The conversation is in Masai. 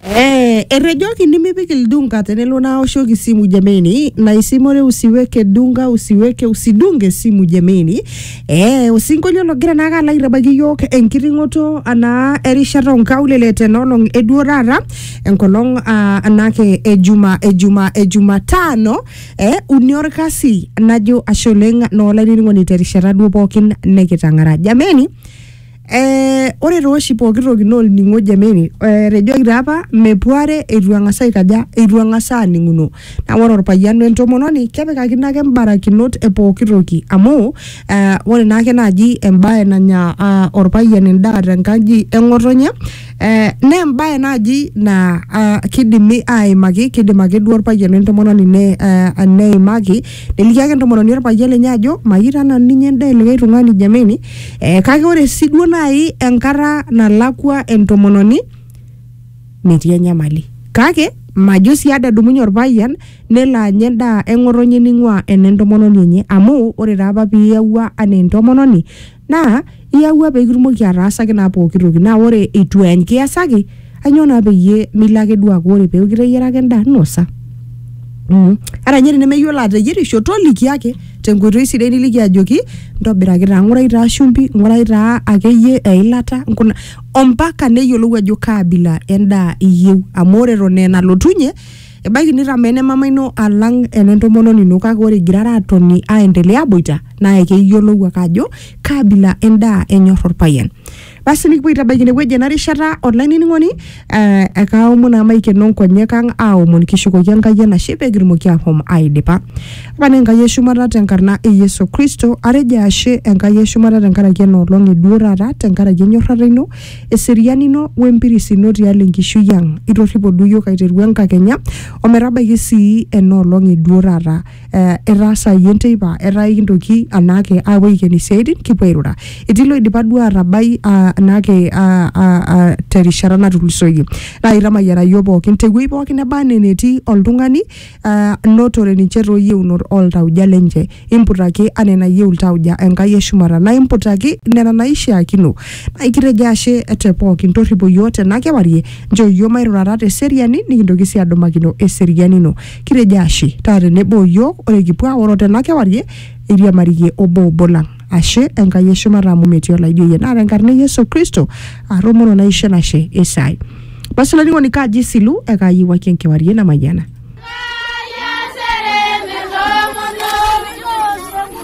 Eh, etejoki nimipik ildunga tenelo naoshoki simu jameni na isimore usiweke dunga usiweke usidunge simu jameni eh, osinkolio logira naake alo aitabaiki yiok enkiting'oto anaa erishata onkaulele tenolong eduo taata enkolong ah, anake ejuma ejuma ejumatano eh, uni orkasi najo ashe oleng noolainining'oni terishata duo pookin nikitang'ara jameni Eh, ore tooshi pooki toki naa olning'o jameni eh, etejoki taa apa mepuare eitu eng'as aikaja eitu eng'as aaning'uno naa ore orpayian wentomononi kepikakino ake imbarakinot e pooki toki amu eh, ore naake naaji embaye nanya ah, orpayian endaa tenkaji eng'otonye eh, naa embaye naaji naa ah, kidimi aimaki kidim ake duo orpayian wentomononi ne, eh, neimaki neliki ake entomononi orpayian lenye ajo mayieu taa nanu ninya endaa e likae tung'ani jameni eh, kake ore si duo nai enkata nalakwa entomononi metii enyamali kake majo si ade edumunye orpayian nelo anya endaa eng'otonye ning'ua enentomononi enye amu ore taa apa piyawua anaa entomononi naa iyawua pekitumoki ataasaki naa pooki toki naa ore itu enkiasaki ainyoo naa peyie milo ake duo aaku ore peeku iteyiaraka endaa nosa mm. ata ninye tenemeyiolo ateyierisho toliki ake tenkoitoi sidai niliki ajoki ntobiraki taa ng'urai taa shumbi ng'urai taa akeyie eilata nkuna ompaka neyiolou ajo kaabila endaa iyieu amu ore eton aa enalotunye ebaiki nitamaa ene mama ino alang ene ntomononi ino kake ore igirara atoni aendelea aboita naa ekeyiolou ake ajo kaabila endaa enyor orpayian Basi nikipuo aitabaiki inewueji ena rishata olainining'oni eh, ekaaomon amu aikeno nkonyek ang aaomon kishukoki Enkai enashe pee kitumoki ahom aidipa. Pane Enkai e shumata tenkarna e Yesu Kristo atejo ashe Enkai e shumata tenkaraki ena olong e duo taata tenkaraki enyorrata ino eseriani ino wempiris ino tialo enkishui ang. Itorripo duo iyiook aiteru enkakenya ometabaiki sii ena olong e duo taata. eh, etaasayie enteipa etaa ikintoki anaake aapuo aiken isiaitin kipuo airura etii loidipa duo atabai ah, anaake ah, ah, ah, terishata natulusoyie naa itamayiana yiok pookin tewuei pookin neba anaa enetii oltung'ani ah, notore ninche toyieunot oltauja lenche imputaki anaa enayieu iltauja enkai eshumata naa imputaki nena naishiakino naa ikitejo ashe te pookin torripo yiok tena kewarie nchoo yiok mairurata teseriani nikintoki sii adumakino eseriani ino Kitejo ashe taa tenebo o yiok ore kipuo aoro tena kewarie eiriamariyie obo obo lang. Ashe Enkai e shumata amu metii olaijo iyie naa tenkarna e Yesu Kristo aatomono naisho enashe esai. Basi olainining'oni kaaji isilu ekaayiewuaki enkewarie namayiana.